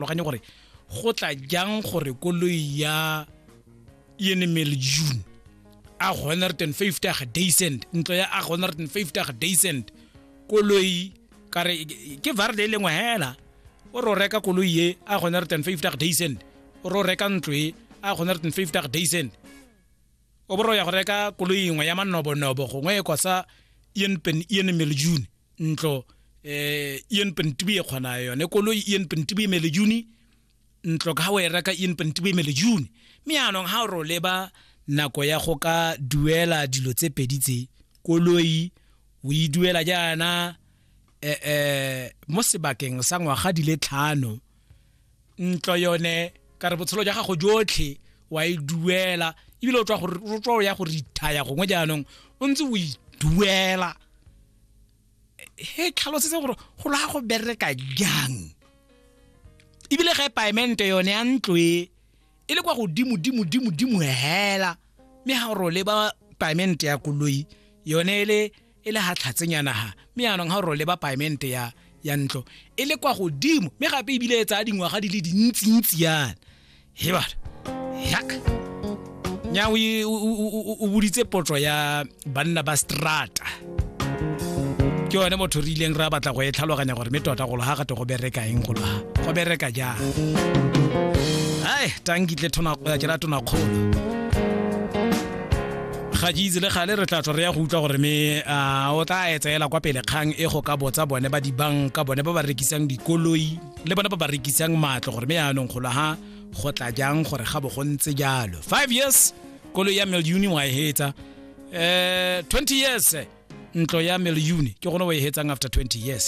farologanye gore go tla jang gore koloi ya enemel june a 150 a ga daycent ntlo ya a 150 a ga daycent koloi kare ke varde e lengwe hela o ro reka koloi ye a 150 a ga daycent o ro reka ntlo e a 150 a ga daycent o bo re ya go reka koloi engwe ya manobonobo gongwe e kosa ienpen iene melejune ntlo um eh, ienpen tibi e kgona yone koloi ienpen tibi e melejune ntlo ka ga o e reka ienpen tibi e melejune mme yaanong ga o re o leba nako ya go ka duela dilo tse pedi tse koloi o e duela jaana um mo sebakeng sa ngwaga di le tlhano ntlo yone ka re botshelo jwa gago jotlhe wa e duela ebile o tswa o ya go rithaya gongwe jaanong o ntse o e duela he tlhalosetse gore go la go bereka jang ebile ga e paemente yone ya ntlo e e le kwa godimo dimo dimo dimo hela mme ha ro le ba payment ya koloi yone e le e le ha tlhatsenyana ha mme yaanong ha ro le ba payment ya ya ntlo e le kwa godimo mme gape ebile e tsaya dingwaga di le dintsintsi yana he bana yak nya o boditse potso ya banna ba strata ke yone motho re ileng ra batla go e tlhaloganya gore mme tota golo ga gate go bereka eng golo ga go bereka jang ai tankitle ke ra tona kgolo ga ke itse le gale re tla tswa re ya go utlwa gore me o tla etsaela kwa pele kgang e go ka botsa bone ba dibanka bone ba ba rekisang dikoloi le bone ba ba rekisang matlo gore me yaanong golo ga go tla jang gore ga bo go ntse jalo five years kolo ya meliuni wa e hetsa eh 20 years eh, ntlo ya meliuni ke gone wa e hetsang after 20 years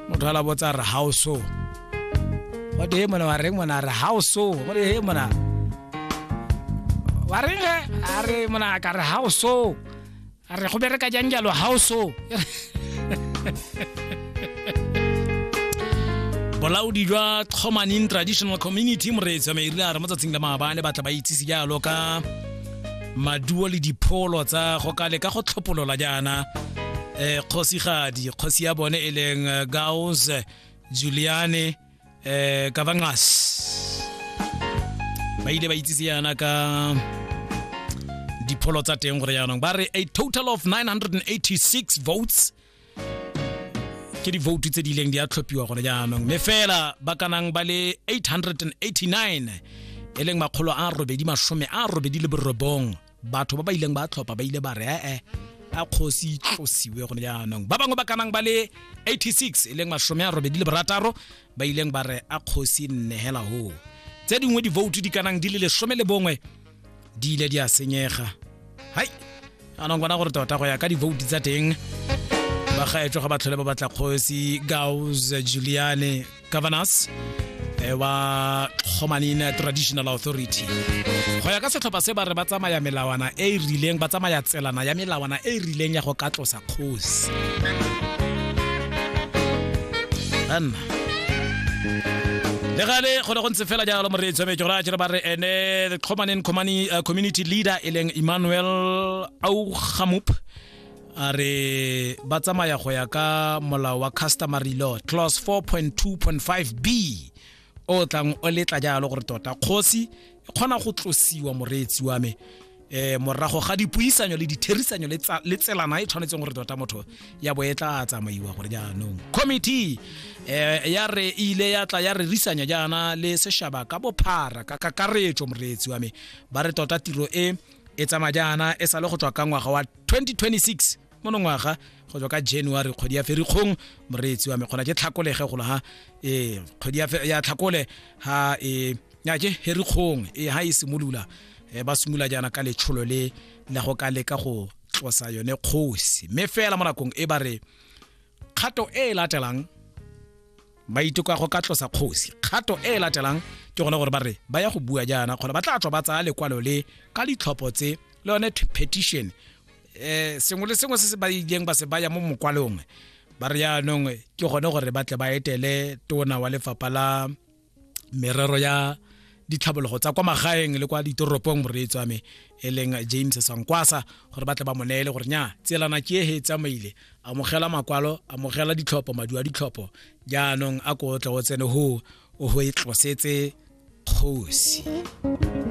motho ala botsa re how so wa te mona wa reng mona re how so wa te he mona wa reng ge a re mona ka re how so a re go bereka jang jalo ga o so bolaodi jwa tlhomaning traditional community moreetsi wa merile a re mo tsatsing la maabane batla ba itsise jalo ka maduo le dipholo tsa go ka leka go tlhopolola jaana um kgosigadi kgosi ya bone e leng eh, gaus juliane eh kavangas ba ile ba itsise yana ka dipholo tsa teng gore yaanong ba re a total of 986 votes ke divoutu tse di ileng di a tlhophiwa gone jaanong mme fela ba kanang ba le 889 e leng makgolo a robedi masome a robedi le borobong batho ba ba ileng ba tlhopha ba ile ba re ee a kgosi tlosiwe gone jaanong ba bangwe ba kanang ba le 86 e leng masome a robedi le borataro ba ileng ba re a kgosi nnegela hoo tse dingwe divoutu di kanang di le lesome le bongwe di ile di a senyega hai anong bona gore tota go ya ka divoutu tsa teng bagaetswa ga ba tlhole ba batla kgosi gaus juliane governors eh, wa kgomanine traditional authority go ya ka setlhopha se ba re ba tsamaya melawana e e rileng ba tsamaya tselana ya melawana e e rileng ya go ka tlosa kgosi banna le gale go ne go ntse fela jalo moreetso me ke gore a jere ba re ene the common community leader e leng emmanuel augamup a re ba tsamaya go ya ka molao wa customary law clause 4.2.5 b o tlang o letla jalo gore tota kgosi e kgona go tlosiwa moreetsi wa me eh morago ga dipuisanyo le ditherisanyo le tsa- le tselana e tshwanetseng gore tota motho ya bo e tla tsamaiwa gore jaanong committee eh ya re ile ya tla ya re risanya jaana le seshaba ka bophara ka kakaretso moreetsi wa me ba re tota tiro e e tsamaya jaana e sale go tswa ka ngwaga wa 2026 monongwaga go tswa ka january kgwedi ya ferikgong moreetsi wa me gona ke tlhakolege golo ha ee kgwedi ya tlhakole ha e ya ke herikgong e ha e simolola e ba simolola jaana ka letsholo le la go ka leka go tlosa yone kgosi mme fela mo nakong e ba re kgato e e latelang ba itoka go ka tlosa kgosi kgato e e latelang ke gone gore ba re ba ya go bua jaana kgona ba tla tswa ba tsaya lekwalo le ka ditlhopho tse le yone petition um sengwe le sengwe se se ba ileng ba se baya mo mokwalong ba re yaanong ke gone gore ba tle ba etele tona wa lefapha la merero ya ditlhabologo tsa kwa magaeng le kwa ditoropong moreetso ame e leng james sankwasa gore ba tle ba mo neele gore nya tselana ke ehe tsamaile amogela makwalo amogela ditlhopho maduo a ditlhopho jaanong a ko tle o tsene ho o ho e tlosetse kgosi